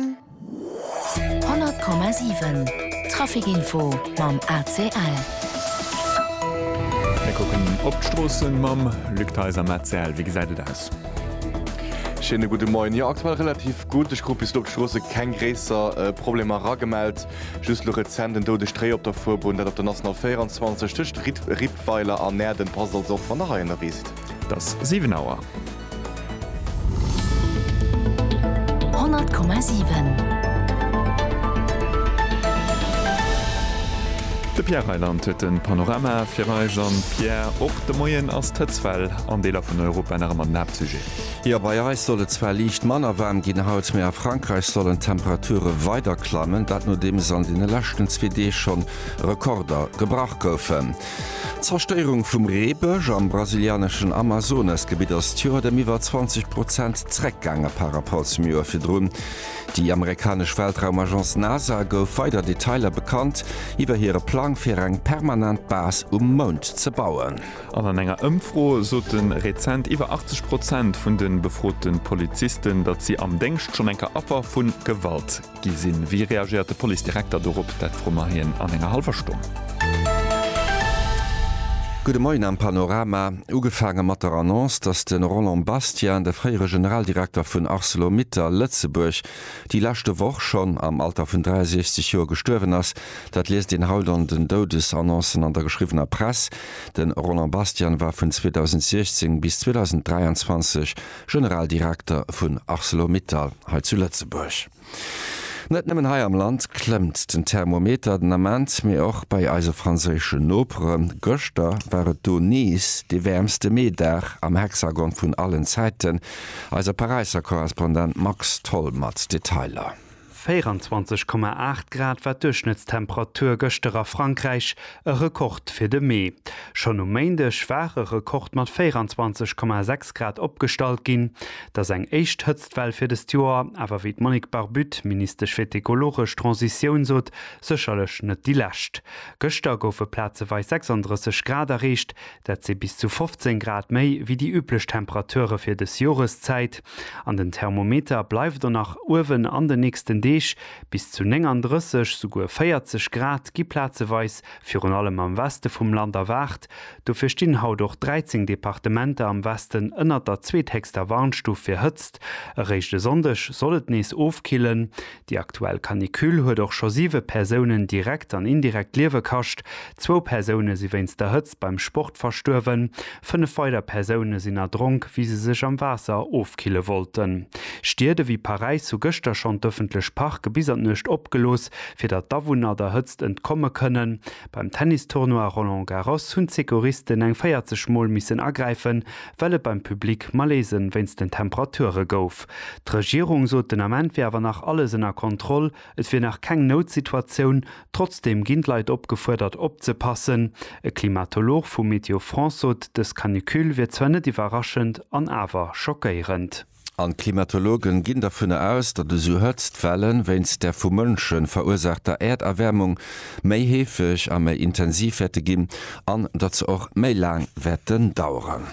100,7 Traficinfo mam ACL. Mir kucken op d'Stroossen mam Luc Theis am ACL. Wéi gesäit et aus? Schéine gudde Moien. Jo, aktuell relativ gutt. Ech krut bis elo op d'Stroosse keng gréisser Problemer eragemellt. Just elo rezent en doude Stréi op der Fuerbunn, dat op der National 24 tëscht Rippweiler an Näerden. Passt also op, wann Der heihinner reest. 't ass 7 Auer. 100,7 De Pierre Reyland huet de Panorama fir eis. An, Pierre, och de Moien ass d'Hëtztwell an Deeler vun Europa nach ëmmer den Haaptsujet. Jo, bei eis soll et zwar liicht manner waarm ginn haut, mee a Frankräich sollen d'Temperature weider klammen, dat nodeems an deene leschten zwee Deeg schonn Rekorder gebrach goufen. D'Zerstéierung vum Reebësch am brasilianeschen Amazonasgebitt ass d'Joert ëm iwwer 20 Prozent zréckgaange par Rapport zum Joer virdrun. Déi amerikanesch Weltraumagence NASA gouf weider Detailer bekannt iwwer hire Plang fir eng permanent Base um Mound ze bauen. An an enger Ëmfro sote rezent iwwer 80 Prozent vun de befrote Polizisten, datt si am Déngscht schonn eng Affer vu Gewalt Gi sinn. Wéi reagéiert de Policedirekter dorop? Dat froe mer hien an enger hallwer Stonn. Gudde Moien am Panorama. Ugefaange mat der Annonce, datt de Roland Bastian, de fréiere Generaldirekter vun Arcelor-Mittal Lëtzebuerg, déi leschte Woch schonn am Alter vun 63 Joer gestuerwen ass. Dat liest een haut an den Doudesannoncen an der geschriwwener Press. De Roland Bastian war vun 2016 bis 2023 Generaldirekter vun Arcelor-Mittal hei zu Lëtzebuerg. Net nëmmen hei am Land klëmmt den Thermometer den Ament, mee och bei eise franséische Noperen. Gëschter war et do nees dee wäermste Meedag am Hexagon vun allen Zäiten. Eise Paräisser Korrespondent Max Tholl mat Detailer. 24,8 Grad war d'Duerchschnëttstemperatur gëschter a Frankräich, e Rekord fir de Mee. Schonn um Méindeg war e Rekord mat 24,6 Grad opgestallt ginn. Datt eng éischt Hëtztwell fir dëst Joer awer, wéi d'Monique Barbutte, Ministesch fir d'ekologesch Transitioun sot, sécherlech net déi lescht. Gëschter goufe plazeweis 36 Grad erreecht, Dat si bis zu 15 Grad méi wéi déi üblech Temperature fir dës Joreszäit. An den Thermometer bleift och nach uewen an den nächsten Deeg. Bis zu 39, souguer 40 Grad gi plazeweis virun allem am Weste vum Land erwaart. Dofir stinn haut och 13 Departementer am Westen ënnert der zweethéchster Warnstuf fir Hëtzt. Eréischt e Sonndeg soll et nees ofkillen. Déi aktuell Canicule huet och scho siwe Persounen direkt an indirekt d'Liewe kascht. Zwou Persoune si wéinst der Hëtzt beim Sport verstuerwen. Fënnef weider Persoune sinn erdronk, wéi se sech am Waasser ofkille wollten. Stied ewéi Paräis hu gëschter schonn d'ëffentlech Parke bis an d'Nuecht opgelooss, fir datt d'Awunner der Hëtzt entkomme kënnen. Beim Tennis-Tournoi Roland Garros hunn d'Secouristen eng 40 Mol missen agräifen, well et beim Public Malaisen wéinst den Temperature gouf. D'Regierung sot den Ament wier awer nach alles ënner Kontroll, et wier nach keng Noutsituatioun. Trotzdeem ginn d'Leit opgefuerdert opzepassen. E Klimatolog vu Météo France sot, dës Canicule wier zwar net iwwerraschend an awer schockéierend. An d'Klimatologe ginn dervun aus, datt esou Hëtztwellen, wéinst der vu Mënsche verursaachter Äerderwärmung, méi heefeg a méi intensiv wäerte ginn an datt se och méi laang wäerten daueren.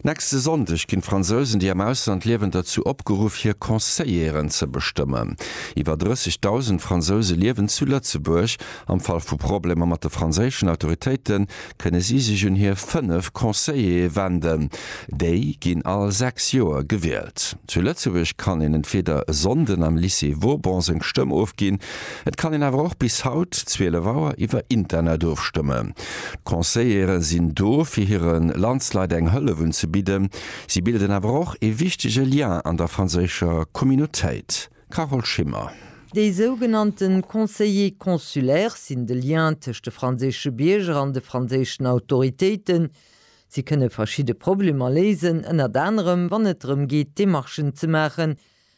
Nächste Sonndeg ginn d'Fransousen, déi am Ausland liewen, derzou opgeruff, hir Conseilleren ze bestëmmen. Iwwer 30.000 Fransouse liewen zu Lëtzebuerg. Am Fall vu Problemer mat de franséischen Autoritéite kënne si sech un hir fënnef Conseillere wenden. Déi ginn all sechs Joer gewielt. Zu Lëtzebuerg kann een entweeder e Sonnden am Lycée Vauban seng Stëmm ofginn. Et kann een awer och bis haut, 12 Auer, iwwer Internet ofstëmmen. D'Conseillere sinn do fir hire Landsleit eng Hëllef unzebidden. Si bilden awer och ee wichtege Lien an der franséischer Communautéit. Carole Schimmer. Déi sougenannte Conseillers consulaires sinn de Lien tëscht de franséische Bierger an de franséischen Autoritéiten. Si kënne verschidde Problemer léisen, ënnert anerem wann et drëm geet Demarchen ze maachen,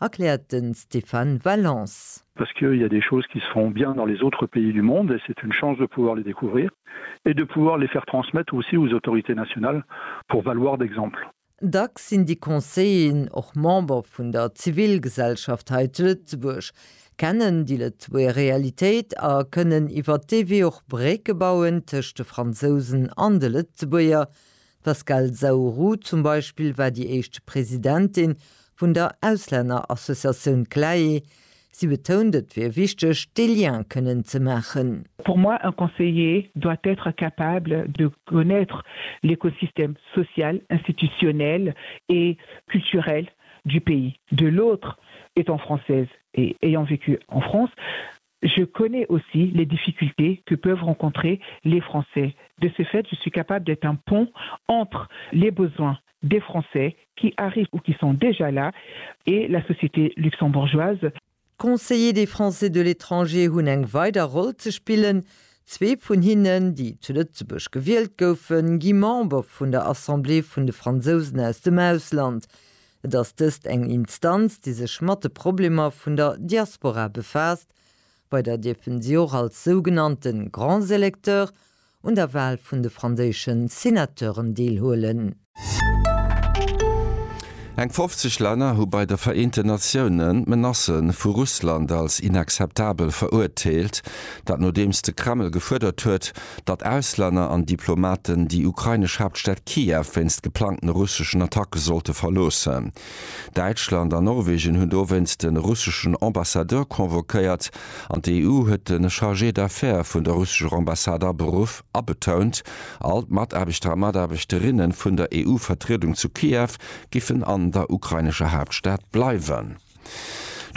Erkläert de Stéphane Valence. Parce qu'il y a des choses qui se font bien dans les autres pays du monde et c'est une chance de pouvoir les découvrir et de pouvoir les faire transmettre aussi aux autorités nationales pour valoir d'exemple. Dacks sinn déi Conseillen och Member vun der Zivilgesellschaft hei zu Lëtzebuerg, kennen déi Lëtzebuerger Realitéit a kënnen iwwer dee Wee och Brécke bauen tëscht de Fransousen an de Lëtzebuerger, D'Pascale Zaourou zum Beispill war déi éischt Presidentin vun der Auslännerassociatioun CLAE. Si betount, et wier wichteg, dee Lien kënnen ze maachen. Pour moi, un conseiller doit être capable de connaître l'écosystème social, institutionnel et culturel du pays de l'autre. Étant française et ayant vécu en France, Je connais aussi les difficultés que peuvent rencontrer les Français. De ce fait, je suis capable d'être un pont entre les besoins des Français qui arrivent ou qui sont déjà là et la société luxembourgeoise. D'Conseillers des Français de l'étranger hunn eng weider Roll ze spillen. Zwee vun hinnen, déi zu Lëtzebuerg gewielt goufen, gi Member vun der Assemblée vun de Fransousen aus dem Ausland. Et ass dëst eng Instanz, déi sech mat de Problemer vun der Diaspora befaasst. Bei der dierfen si och als sougenannte grands électeurs un der Wahl vun de franséische Senateuren deelhuelen. Eng 50 Länner hu bei de Vereenten Natiounen d'Menacen vu Russland als inakzeptabel verurteelt. Dat nodeems de Kreml gefuerdert huet, datt Auslänner an Diplomaten déi ukrainesch Haaptstad Kiew wéinst geplangten russeschen Attacke sollte verloossen. Däitschland an Norwegen hunn dowéinst de russeschen Ambassadeur convoquéiert an d'EU huet de Chargé d'affaires vun der russescher Ambassade aberuff a betount, all d'Mataarbechter a Mataarbechterinnen vun der EU-Vertriedung zu Kiew giffen an der ukrainescher Haaptstad bleiwen.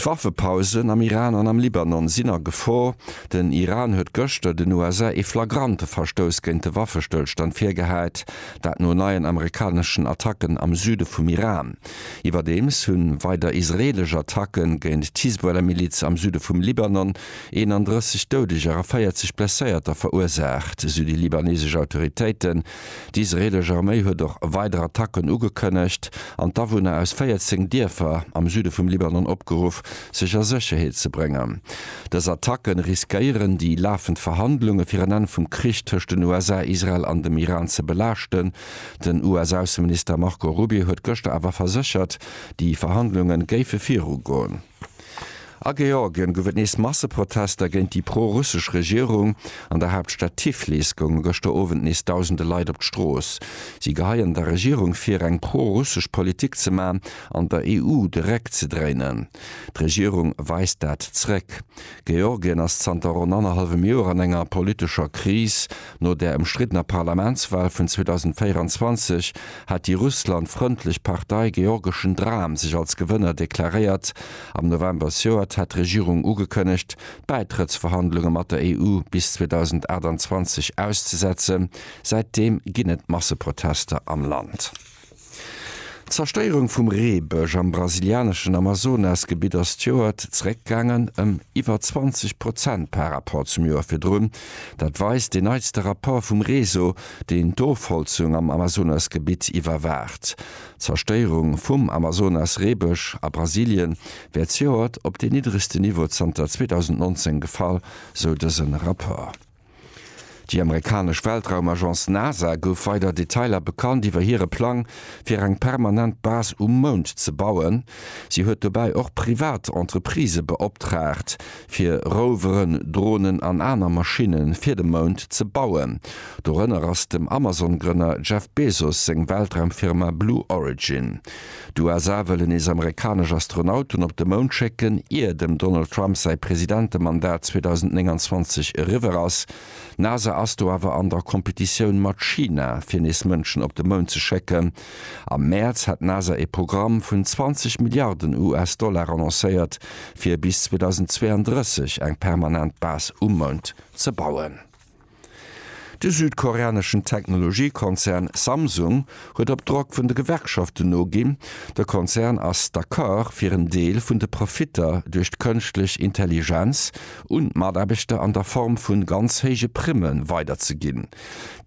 D'Waffepausen am Iran an am Libanon sinn a Gefor. Den Iran huet gëschter den USA ee flagrante Verstouss géint de Waffestëllstand virgehäit, dat no neien amerikaneschen Attacken am Süde vum Iran. Iwwerdeems hu weider israeelesch Attacke géint d'Hisbollah-Miliz am Süde vum Libanon 31 Doudeger a 40 Blesséierter verursaacht, sou déi libanesesch Autoritéiten. D'israeelesch Arméi huet och weider Attacken ugekënnegt an d'Awunner aus 14 Dierfer am Süde vum Libanon opgeruff, sech a Sécherheet ze bréngen. Dës Attacke riskéieren, déi lafend Verhandlunge fir en Enn vum Krich tëscht den USA, Israel an dem Iran ze belaaschten. Den US-Ausseminister Marco Rubio huet gëschter awer verséchert, déi Verhandlunge géife virugoen. A Georgien gouf et nees Masseprotester géint déi pro-russesch Regierung. An der Haaptstad Tiflis gounge gëschter Owend nees dausende Leit op d'Strooss. Si geheien der Regierung vir, eng pro-russesch Politik ze man an der EU de Réck ze dréinen. D'Regierung weist dat zréck. Georgien ass zanter ronn annerhallwem Joer an enger politescher Kris. No der ëmstriddener Parlamentswal vun 2024 hat déi Russland-frëndlech Partei Georgeschen Dram sech als Gewënner deklaréiert. Am November s'Joert hat d'Regierung ugekënnegt, d'Bäitrëttsverhandlunge mat der EU bis 2028 auszesetzen. Säitdeem ginn et Masseprotester am Land. D'Zerstéierung vum Reebësch am brasilianeschen Amazonas-Gebitt ass d'Joert zeréckgaangen ëm iwwer 20 Prozent par Rapport zum Joer virdrun. Dat weist deen neitste Rapport vum Reso, deen d'Ofholzung am Amazonas-Gebitt iwwerwaacht. D'Zerstéierung vum Amazonas-Reebësch a Brasilie wär zejoert op deen niddregste Niveau zanter 2019 gefall, sou dëse Rapport. Déi amerikanesch Weltraumagence NASA gouf weider Detailer bekannt iwwer hire Plang, fir eng permanent Base um Mound ze bauen. Si huet dobäi och privat Entreprisë beoptraagt, fir Roveren, Dronen an aner Maschinne fir de Mound ze bauen. Dorënner ass dem Amazon-Grënner Jeff Bezos seng Weltraumfirma Blue Origin. D'USA wëllen nees amerikanesch Astronauten op de Mound schécken, ier dem Donald Trump säi Presidentemandat 2029 eriwwer ass. D'NASA ass do awer an der Competitioun mat China, fir nees Mënschen op de Mound ze schécken. Am Mäerz hat d'NASA ee Programm vun 20 Milliarden US-Dollar annoncéiert, fir bis 2032 eng permanent Base um Mound ze bauen. De südkoreaneschen Technologiekonzern Samsung huet op Drock vun de Gewerkschaften noginn. De Konzern ass d'Accord fir en Deel vun de Profitter duerch d'Kënschtlech Intelligenz un d'Mataarbechter an der Form vu ganz héije Primme weiderzeginn.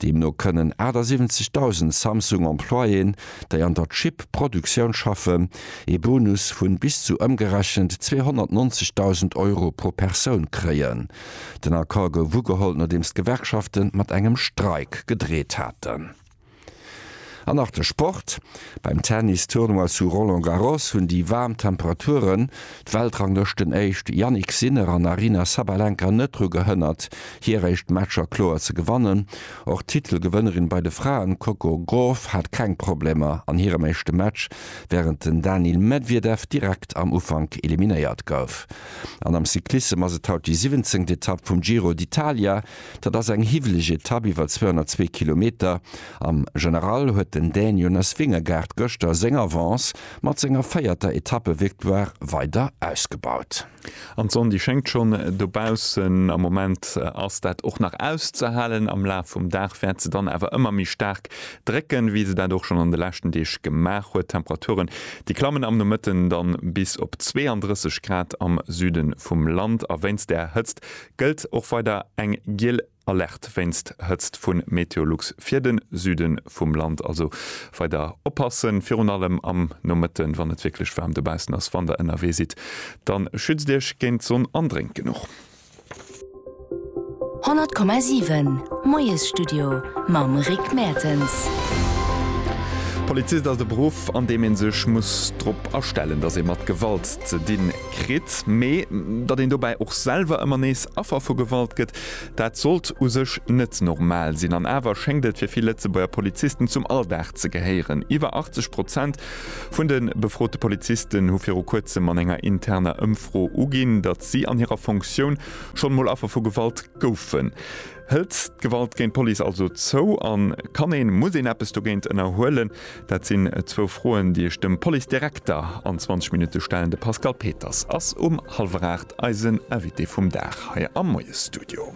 Deemno kënnen 78.000 Samsung-Employéen, déi an der Chip-Produktioun schaffen, ee Bonus vu bis zu ëmgerechent 290.000 Euro pro Persoun kréien. Den Accord gouf ugeholl, nodeems d'Gewerkschafte mat engem Streik gedreet haten. An nach de Sport, Beim Tennis-Tournoi zu Roland Garros hunn déi waarm Temperaturen d'Weltranglëschtenéischt Jannik Sinner an Aryna Sabalenka net dru gehënnert, hir éischt Matcher kloer ze gewannen. Och d'Titelgewënnerin bei de Fraen, Coco Gauff, hat keng Problemer an hirem éischte Match, wärend den Daniil Medwedew direkt am Ufank eliminéiert gouf. An am Cyclissem ass et haut déi siwwenzéngt Etapp vum Giro d'Italia. Dat ass eng hiwweleg Etapp iwwer 202 Kilometer. Am General huet den Dän Jonas Vingegaard gëschter seng Avance mat senger véierter Etappevictoire weider ausgebaut. An d'Sonn déi schéngt schonn dobaussen. Am Moment ass dat och nach auszehalen. Am Laf vum Dag wäert se dann awer ëmmer méi staark Drécken, wéi se dat och schonn an de leschten Deeg gemaach huet. D'Temperaturen, déi klammen am Nomëtten dann bis op 32 Grad am Süden vum Land. A wéinst där Hëtzt gëllt och weider eng giel Alerte wéinst Hëtzt vun Meteolux fir den Süden vum Land. Also weider oppassen, virun allem am Nomëtten, wann et wierklech waarm dobaussen ass. Wann der ënnerwee sidd, dann schützt iech géint d'Sonn an drénkt genuch. 100,7 Moiesstudio mam Rick Mertens. Polizist ass e Beruff, an deem ee sech muss drop astellen, datt ee mat Gewalt ze di kritt. Mee datt een dobäi och selwer ëmmer nees Affer vu Gewalt gëtt, dat sollt u sech net normal sinn. An awer schéngt et fir vill Lëtzebuerger Polizisten zum Alldag ze gehéieren. Iwwer 80 Prozent Vun de befrote Polizisten hu viru kuerzem an enger interner Ëmfro uginn, datt si an hirer Fonctioun schonn mol Affer vu Gewalt goufen. Hëlt d'Gewalt géint d'Police also zou? An kann een, muss een eppes dogéint ënnerhuelen? Dat sinn zwou Froen, déi ech dem Policedirekter an 20 Minutte stellen. De Pascal Peters ass um hallwer 8 eisen Invité vum Dag hei am Moiesstudio.